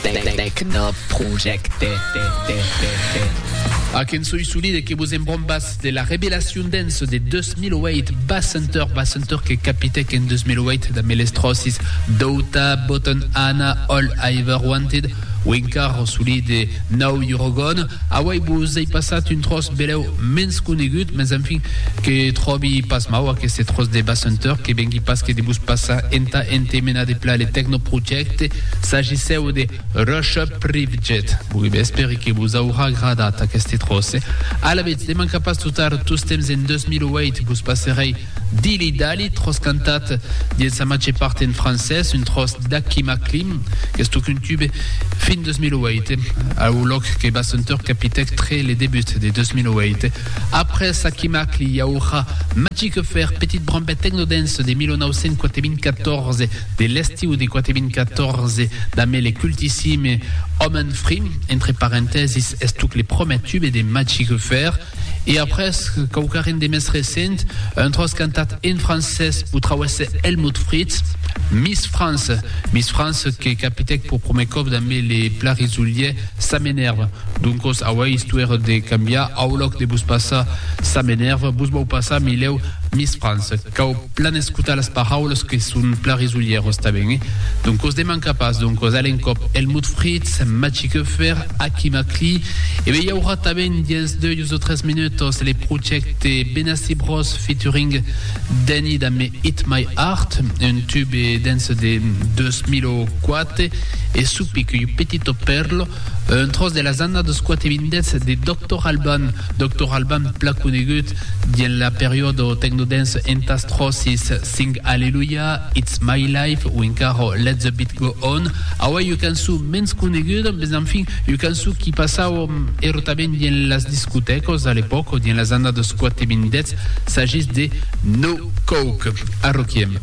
Tecnoprojecte. Ac en soi solide que vos embrombas de la revelacion dens de 2008 Bassenter, Bassenter que capitèc en 2008 damb eles tròcis Douta, Botton Anna, All I Ever Wanted, Winkar o solide Now You're Gone. Auei vos ei passat un tròç belèu mens conegut, mens enfin que tròbi pas mau aqueste tròç de Bassenter, que vengui pas que de vos passar entà entemena de pla le Tecnoprojecte. S'agissèu de Russia Privjet. Bon, espèri que vos aurà agradat aqueste tròce. Alavetz, de mancar pas tot ar tostemps en 2008 vos passerèi Dilly Dally, tròç cantat dins sa màger part en francés, un tròç d'Hakim Aklim, qu'es tocun tube fin 2008, au lòc que Bassentor capitèc tre le debut de 2008. Après Hakim Akli i aurà Magic Affair, petit brambet techno-dance de 1994, De l'estiu de 4014 damb le cultissime Òmen Frim, entre parentèsis estuc le promèr tube de Magic Affair, e après quauquarren de mès recent, un tròç cantat en francés p'o trauèsse Helmut Fritz, Miss France, Miss France que capitèc p'o promèr còp damb le pla risolier Ça m'énerve. Doncos aué istuèr de cambiar, au lòc de vos passar Ça m'énerve, vos vau passar, milèu, Miss France. Cau. Plan escotar las paraulas que son plan risolhèros tanben, eh? Doncos demanca pas, doncos a l'encòp, Helmut Fritz, Maciej Höfer, Aki Makli, e be i aurà tanben dens doius o tres minutos le projècte Benassi Bros featuring Danny Dame Hit My Heart, un tube dance de 2004 e su pic iu petito perlo, un tròç de las annadas quate vindètz de Doctor Alban, Doctor Alban plan conegut Dins la periòdo tecnodance entà Strosis, Sing Hallelujah, It's My Life o encara Let the Beat Go On, aué ua cançon mens coneguda, mès enfin ua cançon qui passava erotament dins las discotècas a l'epòca, dins las annadas 4 e 2010, s'agís de No Coke. Arroquiem.